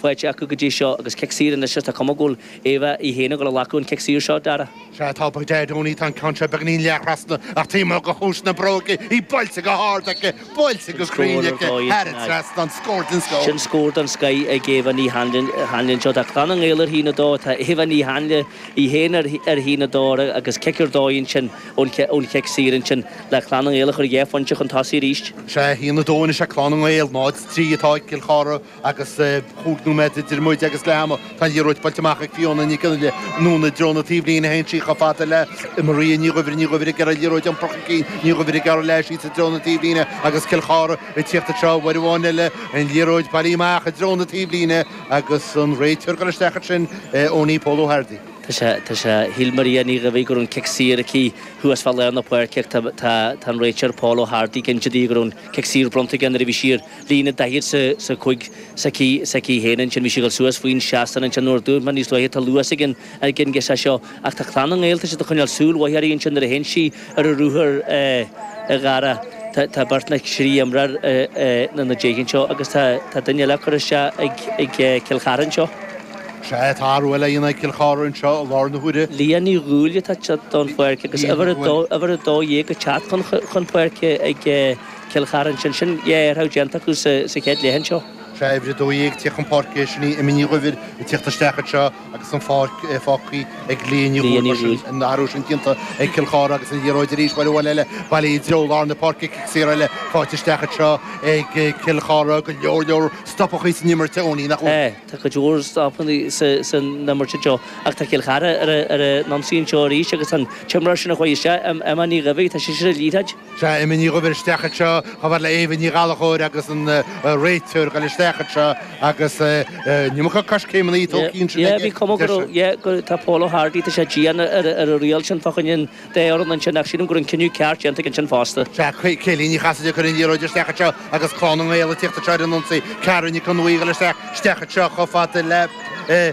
faighte acu go dtí seo, agus cic saor anois is tá cuma go bhfuil Éabha í féin ag glacadh an chic saor seo, Dara. Sea, atá bocht Deaid i ngan fhios, tá an ceann seo beagáinín leath-thrasna, ach taoi mhór go chluais na bróige, í buailte go hard aici, buailte go cruinn aici, thar an trasnán, scór den scoth. Sin scór den scoth ag Éabha Ní hAinle anseo. Tá Clann na nGael ar a haon a dó, tá Éabha Ní hAinle í féin ar a haon a dó agus cic ar dóigh ansin ón chic saor ansin le Clann na nGael a chur dhá phointe chun tosaigh arís. Sea, a haon a dó anois ag Clann na nGael, 0-3 atá ag Cill Chartha, agus chúig nóiméad idir muid agus leath ama, tá an liathróid buailte amach ag Fiona Nic Fhionnghaile anonn i dtreo na taobhlíne, a théann sí chomh fada le Maria Ní Dhuibhir, Ní Dhuibhir ag iarraidh an liathróid a iompar chun cinn, Ní Dhuibhir ag gearradh leis, síos i dtreo na taobhlíne agus Cill Chartha ag tíocht anseo, uair amháin eile an liathróid bailithe amach i dtreo na taobhlíne agus an réiteoir ag goil isteach ansin, Eoinín, Pól Ó hArdaigh. Tá sé, tá sé, shíl Maria Ní Dhuibhir go raibh an cic saor aici thuas fá lár na páirce ach tá, tá, tá an réiteoir Pól Ó hArdaigh cinnte de go raibh an cic saor bronnta aige nuair a bhí sí ar, líne daichead is a, is a cúig, s'aici, s'aici fhéin ansin, bhí sí a dhul suas faoin seastán ansin, mar a dúirt mé níos luaithe, tá luas ag an, ag an ghirseach seo, ach tá Clann na nGael, tá siad a choinneáil súil mhaith uirthi ansin nuair a théann sí ar a ruathar, eh, a Dhara, tá, tá beirt nó trí imreoir, eh, eh, ina, ina diaidh anseo agus tá, tá duine eile á chur isteach ag, ag, eh, Cill Chartha anseo. Is ea, tá athrú eile a dhéanamh ag Cill Chartha anseo i láthair na huaire. Liadh Ní Dhúill atá ag teacht den pháirc agus uimhir a dó, uimhir a dó dhéag ag teacht chun, chun páirce ag, eh, Cill Chartha ansin, sin é athrú déanta acu sa chéad leath anseo. Uimhir a 12 ag teacht chun páirce sin í Amy Ní Dhuibhir ag teacht isteach anseo agus an pháirc fágthaí ag Liadh Ní Dhúill mar sin an athrú sin déanta ag Cill Chartha agus an liathróid arís bhail abhaile le baile i dtreo lár na páirce cic saor eile faighte isteach anseo ag Cill Chartha go leor leor stopachaí san imirt a Eoinín nach bhfuil? Tá cuid mhór stopachaí san imirt anseo ach tá Cill Chartha ar a n-ionsaí anseo arís agus tá an t-imreoir sin a chuaigh isteach Amy Ní Dhuibhir tá sise sa liathróid Sea, Amy Ní Dhuibhir isteach anseo, chomh fada le Éabha Ní Ghallachóir agus an réiteoir ag goil isteach anseo agus an iomarca coiscéimeanna tógtha ansin aici. Bhí cuma gur, yeah, gur, tá Pól Ó hArdaigh, tá sé dian ar an riail sin fá choinne an dá fhoireann ansin ach sílim go raibh an cinneadh ceart déanta aige ansin fosta. Sea, Céline Ní Chasaide ag cur an liathróid isteach anseo agus Clann na nGael ag tíocht anseo ar an ionsaí. Ciara Nic an Bhaoighill isteach, isteach anseo chomh fada le, eh,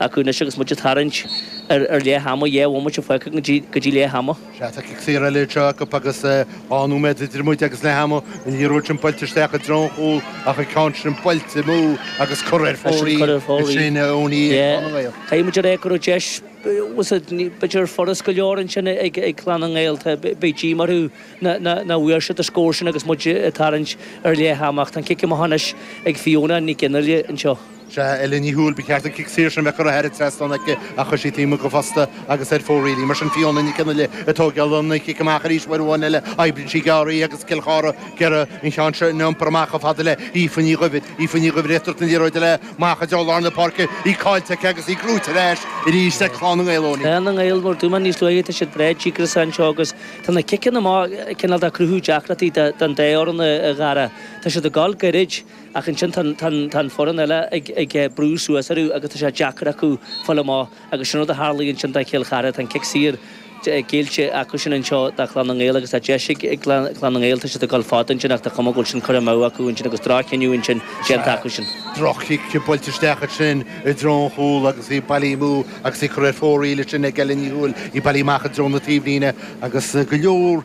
acu anois agus muid ag tarraingt ar leith ama, dhá bhomaite fágtha go dtí leath ama. Sea, tá cic saor eile anseo acu agus dhá nóiméad idir muid agus leath ama, an liathróid sin buailte isteach i dtreo an chúil ach an ceann sin buailte amú agus curtha ar fóraoil ag Séan Eoin Uí Chonghaile. Caithfidh muid a rá go raibh deis, b'fhéidir gur furast go leor ansin ag Clann na nGael, beidh díomá orthu nach bhfuair siad an scór sin agus muid ag tarraingt ar leath ama ach tá an cic amach anois ag Fiona Nic Fhionnghaile anseo. Sea, Ellen Ní Dhúill, ba cheart an cic saor sin bheith curtha thar an trasnán aici, ach chuir sí an t-am seo fosta, agus ar fóraoil í. Mar sin, Fiona Nic an Fhile ag tógáil an chic amach arís uair amháin eile, imríonn sí gearr í, agus Cill Chartha go dearfa ceann seo, ina iompar amach chomh fada le hAoife Ní Dhuibhir. Aoife Ní Dhuibhir, ag tabhairt na liathróide léi amach i dtreo lár na páirce, í cáillte aici agus í gnóite ar ais arís ag Clann na nGael ann. Clann na nGael, mar a dúirt mé níos luaithe, tá siad breá díograiseach anseo, agus tá na ciceanna amach cineál ag cruthú deacrachtaí don dá fhoireann go dearfa. Tá siad ag goil goirid. Ach ansin tá an foireann eile ag brú suas orthu agus tá sé deacair acu fáil amach agus sin an rud a tharlaigh ansin do Chill Chartha. Tá an cic saor géillte acusan anseo do Chlann na nGael agus tá deis ag Clann na nGael, tá siad ag dul fada ansin ach tá cuma go bhfuil sin curtha amú acu ansin agus droch-chinneadh ansin déanta acusan. Droch-chic buailte isteach ansin i dtreo an chúil agus í bailithe amú agus í curtha ar fóraoil ansin ag Ellen Ní Dhúill, í bailithe amach i dtreo na taobhlíne agus go leor